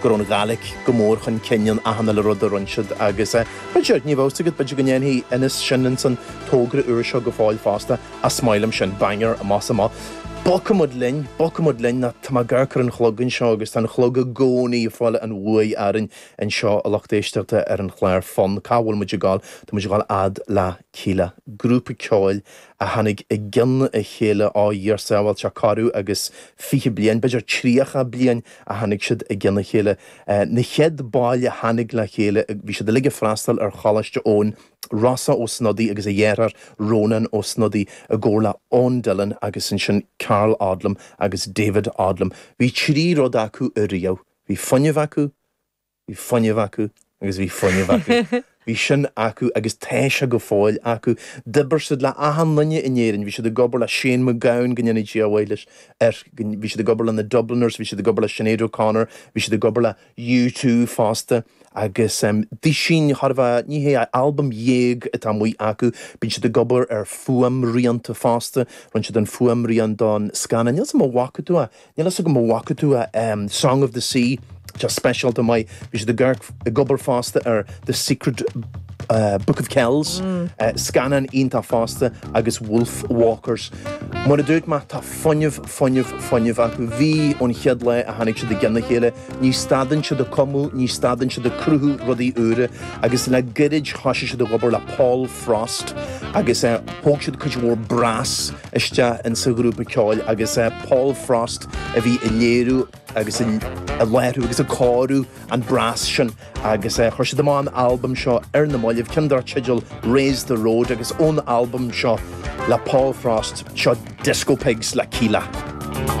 go raibh an Ghaeilig go mór chun cinn in achan uile rud a rinne siad agus, b'fhéidir, níl a fhios agam, b'fhéidir go ndéanfaidh Inis sin ins an togra úr seo go fóill fosta, is maith liom sin, banc ar an bhos amuigh. Bogfaimid linn, bogfaimid linn, nó tá mé ag amharc ar an chlog anseo agus tá an chlog i gcónaí ag fáil an bhuaidh orainn anseo, a lucht éisteachta ar an chlár Fonn, cá bhfuil muid ag dul, tá muid ag dul a fhad le Kíla, grúpa ceoil a tháinig i gcionn a chéile a Dhia ár sábháil, tá corradh agus fiche bliain, b'fhéidir tríocha bliain, a tháinig siad i gcionn a chéile. Na chéad baill a tháinig le chéile, bhí siad uilig ag freastal ar Choláiste Eoin, Rossa Ó Snodaigh agus a dheartháir Rónán Ó Snodaigh i gcomhar le Eoin Dillon agus ansin Karl Odlum agus David Odlum. Bhí trí rud acu ariamh, bhí fuinneamh acu, Bhí fuinneamh acu agus bhí fuinneamh acu. Bhí sin acu agus tá sé go fóill acu. D'oibir siad le achan duine in Éirinn. Bhí siad ag obair le Shane McGowan, go ndéana Dia a mhaith leis, air, bhí siad ag obair le na Dubliners, bhí siad ag obair le Sinéad O'Connor, bhí siad ag obair le U2 fosta agus em dosaen, tarbh é, ní hea, albam dhéag atá amuigh acu. Bíonn siad ag obair ar fuaimrianta fosta, rinne siad an fuaimrian don scannán, níl 's agam a' bhfaca tú é, Níl a fhios agam a bhfaca tú Song of the Sea, tá speisialta maith, bhí siad ag obair fosta ar The Secret Book of Kells, scannán iontach fosta agus Wolf Walkers. Mar a dúirt muid, tá fuinneamh, fuinneamh, fuinneamh acu. Bhí, ón chéad lá a tháinig siad i gceann a chéile. Ní stadann siad ag cumadh, ní stadann siad ag cruthú rudaí úra agus le gairid thosaigh siad ag obair le Paul Frost agus thóg siad cuid mhór brass, isteach insa ghrúpa ceoil agus Paul Frost a bhí ag léiriú agus ag láithriú agus ag cóiriú an brass sin agus chuir siad amach an albam seo ar na maillibh, ceann dár teideal Raise the Road agus ón albam seo le Paul Frost, seo Disco Pigs le Kíla.